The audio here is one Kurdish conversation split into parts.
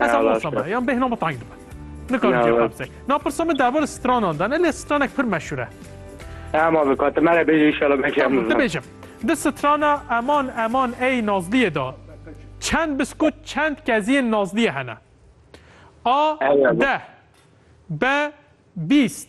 Ez Eyvallah, hemû same. Yan bêhna min tayîn dibe. Nikarim Eyvallah. cevap se. Na pirsa min derbarê stranan dane lê stranek pir meşhur e. Em abi katimere bêjî inşallah belkî em Tamam, dibêjim. Di strana eman eman ey nazliyê da. Çend biskut çend keziyên nazliyê hene. A Eyvallah. deh. B bîst.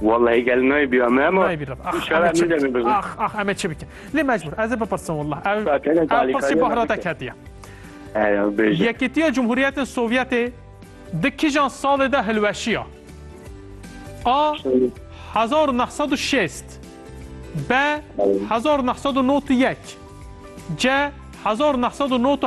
Wellahî gel naybîya me ma. Naybî reb. Ax şara min de bibin. Ax ax em çi bikin. Lê mecbûr ez ê bipirsin wellah. Ew ew pirsî bahratek hetiye. Yekîtiya Cumhuriyetên Sovyetê di kîjan salê de hilweşiya? A. 1960 B. 1991 C. 1997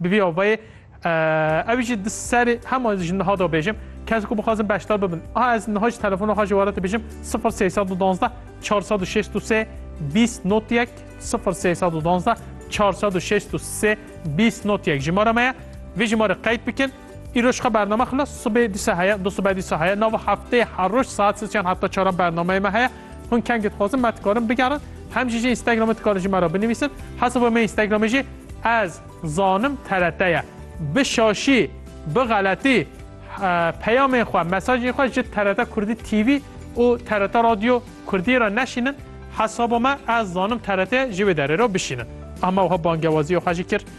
Bi vî avayê ew jî di serê hema ji niha da bêjim kes ku bixwazin beşdar bibin. A ez niha ji telefona xwe ji were te bêjim 0312 463 20 not yek 0312 463 20 not yek jimara me ye. Vê jimarê qeyd bikin. Îro ji xwe bername xilas sibê dîsa heye, dusibê dîsa heye, nava hefteyê her roj saet sêz yan heta çaran bernameyê me heye. Hûn kengê dixwazin me dikarin bigerin. Hem jî ji Instagramê dikarin ji me re binivîsin. Hesaba me Instagramê jî ez zanim TRT ye. Bi şaşî, bi xeletî peyamên xwe, mesajên xwe ji TRT Kurdî TV û TRT Radio Kurdî re neşînin. Hesaba me ez zanim TRT ye jî wê derê re bişînin. Ame wiha bangewaziya xwe jî kir.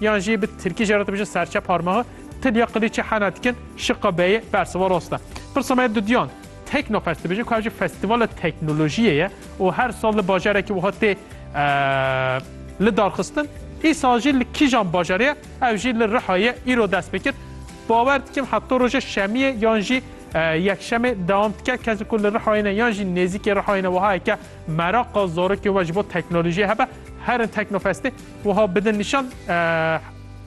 Yan jî bi tirkî jê re dibêje serçe parmaxe, tilya qilîçê hena dikin, şiqa beyê bersiva rast e. Pirsa me ya duduyan, Teknofest dibêje ku ev jî festîvala teknolojiyê ye û her sal li bajarekî wiha tê lidarxistin. Îsal jî li kîjan bajarê ye? Ev jî li Rihayê ye, îro dest pê kir. Bawer dikim heta roja şemiyê yan jî yekşemê dewam dike. Kesên ku li Rihayê ne yan jî nêzîkê Rihayê ne wiha heke meraqa zarokê we ji bo teknolojiyê hebe herin Teknofestê. Wiha bidin nîşan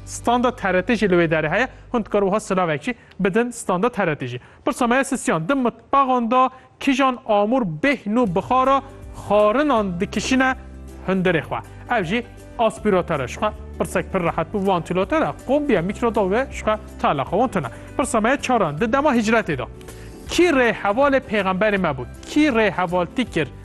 standa TRT jî li wê derê heye. Hûn dikar wiha silavek jî bidin standa TRT jî. Pirsa me ye sisiyan di mitbaxan de kîjan amûr bêhn û bixara xarinan dikişîne hundirê xwe. Ev jî aspîratere ji xwe pirsek pir rehet bû vantîlatore, kombiye, mîkrodalve ji xwe teleqa wan tune. Pirsa me ye çaran di dema hicretê de kî rê hevalê pêxemberê me bû? Kî rê hevaltî kir?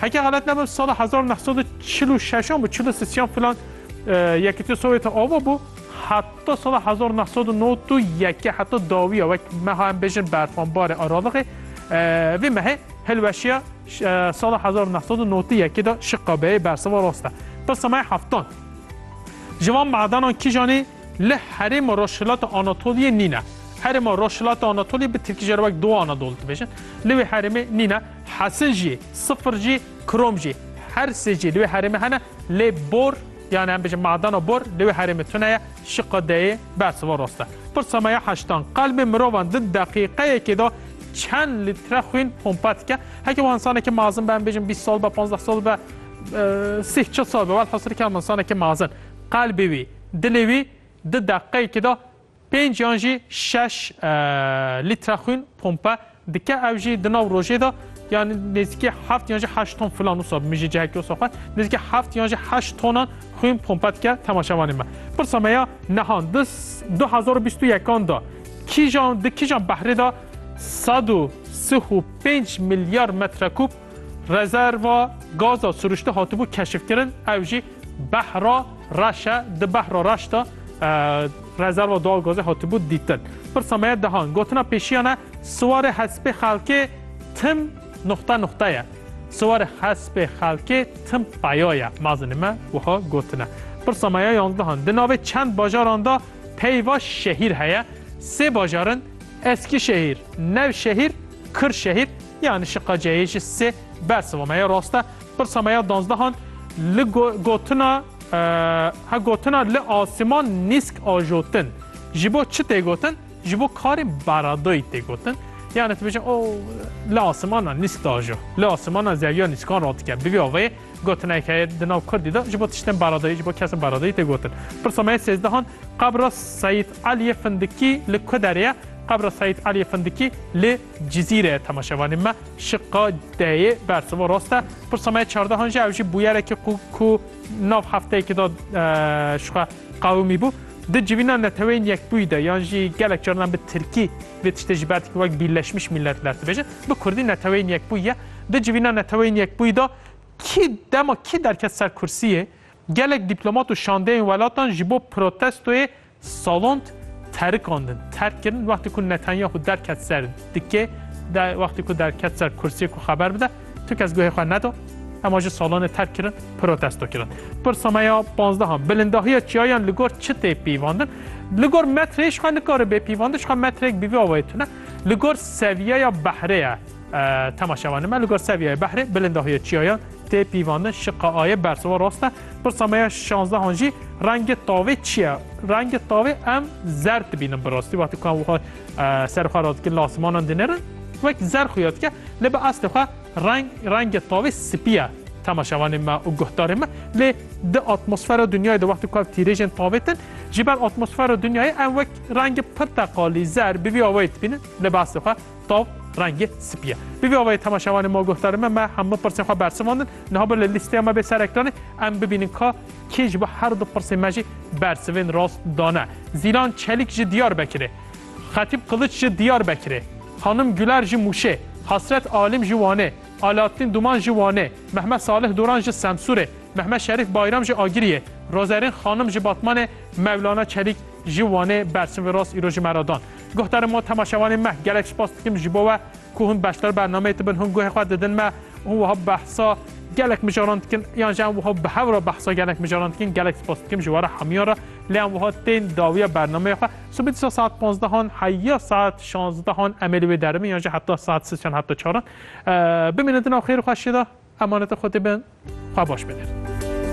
Heke xelet nebim sala hezar û neh sed û çil û şeş an bû çil û sisiyan filan Yekîtiya Sovyetê ava bû heta sala hezar û neh sed û nod û yekê heta dawiya wek meha em bêjin berxanbarê Aralixê vê mehê hilweşiya sala hezar û neh sed û nod û yekê de şiqabeyê bersiva rast e. Ta semaya heftan ji van madenan kîjanî li herêma rojhilata Anatoliyê nîne. Herêma rojhilata Anatoliyê bi tirkî jê re wek Doğu Anadolu dibêjin. Li wê herêmê nîne. Hesij jî, sifir jî, krom jî. Her sê jî li wê herêmê hene lê bor yani em bêjin madena bor li wê herêmê tune ye, şiqa deyê bersiva rast e. Pirsa me ya heştan, qelbên mirovan di deqîqeyekê de çend lître xwîn pompa dike? Heke wiha insanekî mazin be em bêjin bîst sal be, panzdeh sal be, sih çil sal be, welhasir ke em insanekî mazin. Qelbê wî, dilê wî di deqîqeyekê de Pênc yan jî şeş lître xwîn pompe dike. Ew jî di nav rojê de yani nêzîkî heft yan jî heşt ton filan wisa min jî cihekî wisa xwe nêzîkî heft yan jî heşt tonan xwîn pompe dike temaşevanê me. Pirsa me ya nihan di du hezar û bîst û yekan de kîjan di kîjan behrê de sed û sih û pênc milyar metrekûb Rezerva gaza siruştî hatibû keşifkirin, ew jî behra reş e. Di behra reş de rezerva doğal gazê hatibû dîtin. Pirsa me ye dehan. Gotina pêşiyan e siwarê hespê xelkê tim nuxte nuxte ye. Siwarê hespê xelkê tim peya ye. Mezinê me wiha gotine. Pirsa me ye yanzdehan. Di navê çend bajaran de peyva şehîr heye. Sê bajarin Eskîşehîr, Nevşehîr, Kirşehîr. Ya nişiqa ceyê ji sê bersiva me ya rast e. Pirsa me ya danzdehan li gotina he gotina li asiman nîsk ajotin. Ji bo çi tê gotin? Ji bo karên baradoyî tê gotin. Yani dibêjin o li asimana nîsk dajo. Li asimana zeviya nîskan radike. Bi vî avê gotinek heye di nav Kurdî de ji bo tiştên baradoyî, ji bo kesên baradoyî tê gotin. Pirsa me ya sêzdehan qebra Seyîd Eliyê Findikî li ku derê ye? Qebra Seyîd Eliyê Findikî li Cizîre, Temaşevanên me şiqa deyê bersiva rast e. Pirsa me ya çardehan jî ew jî bûyerekî qû ku nav hefteyekî de ji xwe qewimî bû. Di civîna Neteweyên Yekbûyî de yan jî gelek caran em bi tirkî vê tiştê ji ber dikîn wek Birleşmiş Milletler dibêjin. Bi kurdî Neteweyên Yekbûyî ye. Di civîna Neteweyên Yekbûyî de kî dema kî derket ser kursiyê, gelek dîplomat û şandeyên welatan ji bo protestoyê Salond terikandin, terk kirin wextê ku Netanyahu derket ser dikê de wextê ku derket ser kursiyê ku xeber bide, tu kes guhê xwe neda, hema jî salonê terk kirin, protesto kirin. Pirsa me ya panzdehan, bilindahiya çiyayan li gor çi tê pîvandin? Li gor metreyê jixwe nikare bê pîvandin, jixwe metreyek bi vî awayê tune. Li gor seviyeya behrê ye temaşevanê me, li gor seviyeyê behrê bilindahiya çiyayan tê pîvandin, şiqe aye bersiva rast e. Pirsa me ya şanzehan jî rengê tavê çi ye? Rengê tavê em zerd dibînin bi rastî wextê ku em wiha ser xwe rast dikin li asimanan dinêrin wek zer xuya dike lê bi eslê xwe reng rengê tavê spî ye temaşevanê me û guhdarê me lê di atmosfera dinyayê de wextê ku ev tîrêjên tavê din ji ber atmosfera dinyayê em wek rengê pirteqalî zer bi vî awayê dibînin lê bi eslê xwe Tav rengê spî ye. Bi vî awayî temaşevanên ma guhdarên me me hemû pirsên xwe bersivandin. Niha bi li lîsteya me bê ser ekranê em bibînin ka kê ji bo her du pirsên me jî bersivên rast dane. Zîlan Çelîk ji Diyarbekirê, Xetîb Qiliç ji Diyarbekirê, Xanim Guler ji Mûşê, Hasret Alîm ji Wanê, Alaaddîn Duman ji Wanê, Mehmet Salih Duran ji Semsûrê, Mehmet Şerîf Bayram ji Agiriyê, Rozerîn Xanim ji Batmanê, Mevlana Çelîk ji Wanê bersivên rast îro ji me re dan. Guhdarê me û temaşevanên me, gelek spas dikim ji bo we ku hûn beşdar bernameyê dibin, hûn guhê xwe didin me û hûn wiha behsa gelek mijaran dikin yan jî em wiha bi hev re behsa gelek mijaran dikin. Gelek spas dikim ji were hemiyan re lê em wiha tên dawiya bernameyê xwe. Sibê dîsa saet panzdehan heya saet şanzdehan em ê li wê deribin yan jî heta saet sêz yan heta çaran. Bimînin di nav xêr û xweşiyê de. Emanetê Xwedê bin. Xwe baş bidin.